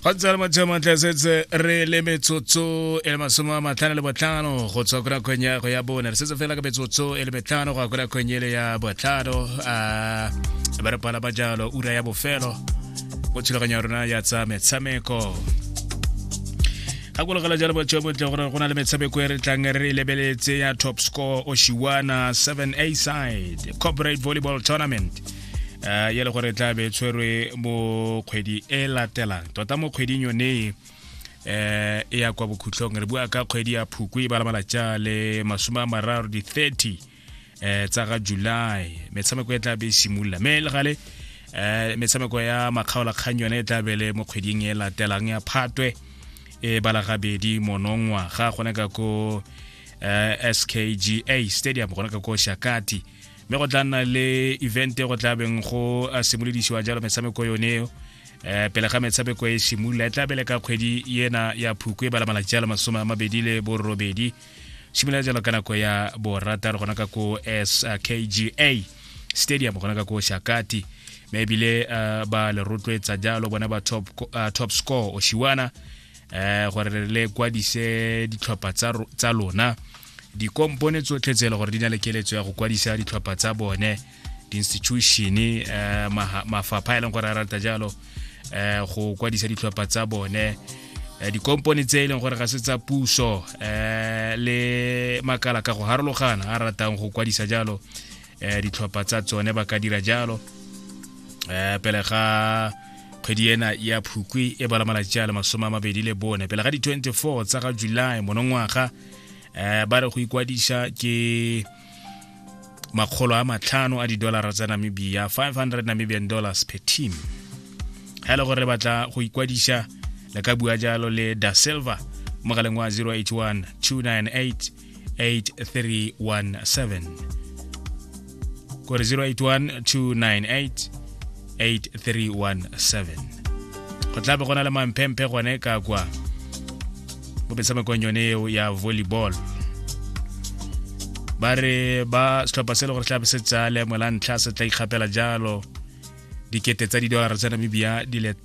go ntse le motho montle setse re le metsotso e le masome a matlhano le botlhano go tswa kora kgweng ya go ya bone re setse fela ka metsotso e le metlhano go ya kora kgweng ele ya botlhano a ba re pala ba jalo ura ya bofelo go thulaganyo ya rona ya tsa metshameko gakologela jalo botho bontle gore go na le metshameko e re tlang re lebeletse ya top score oshiwana 7 a side corporate volleyball tournament uh, ya le gore tla be tshwerwe mo kgwedi e latelang tota mo kgweding yone eh e ya kwa bokhutlong re bua ka kgwedi ya phuku e balamala ja le masome a mararo di-30 eh tsa ga july metshameko e tla be e simolola mme le gale eh metshameko ya makgaolakgang yone e tla be le mo kgweding e latelang ya phatwe e bala gabedi monongwa ga gone ka ko eh, skga stadium gone ka ko shakati mme go tla nna le event go tla beng go simolodisiwa jalo metshameko yone eo um pele ga metshameko e simolola e tla bele ka kgwedi ena ya phuku e bala malatsi a le masome a mabedi le borobedi simolola jalo ka nako ya borataro gona ka ko skga stadium gona ka ko shakati mme ebile uh, ba le rotloetsa jalo bona ba top, uh, top score oshiwana um uh, gore le kwadise ditlhopha tsa lona dikompone tsotlhe tse e le gore di na le keletso ya go kwadisa ditlhopha tsa bone di-institution um mafapha e leng gore a rata jalo um go kwadisa ditlhopha tsa bone eh, dikompone tse e leng gore ga se tsa puso um le makala ka go harologana a ratang go kwadisa jalo um ditlhopha tsa tsone ba ka dira jalo um pele ga kgwedi ena ya phukwi e bala malatsi a le masome a mabedi le bone pele ga di-24 tsa ga july monongwaga eh ba re go ikwadisa ke makgolo a matlhano a didolara tsa namibia 500 namibian dollars per team ga le gore re batla go ikwadisa le ka bua jalo le da silver mogaleng wa 081 298 8317 kwa 0812988317 go tla be go na le mamphemphe gone ka kwa mo metshamekong yone eo ya volleyball ba re ba setlhopha se le gore tlabe se tsaya leemo la ntlha se tla ikgapela jalo dikete tsa didolara tsa namibia di le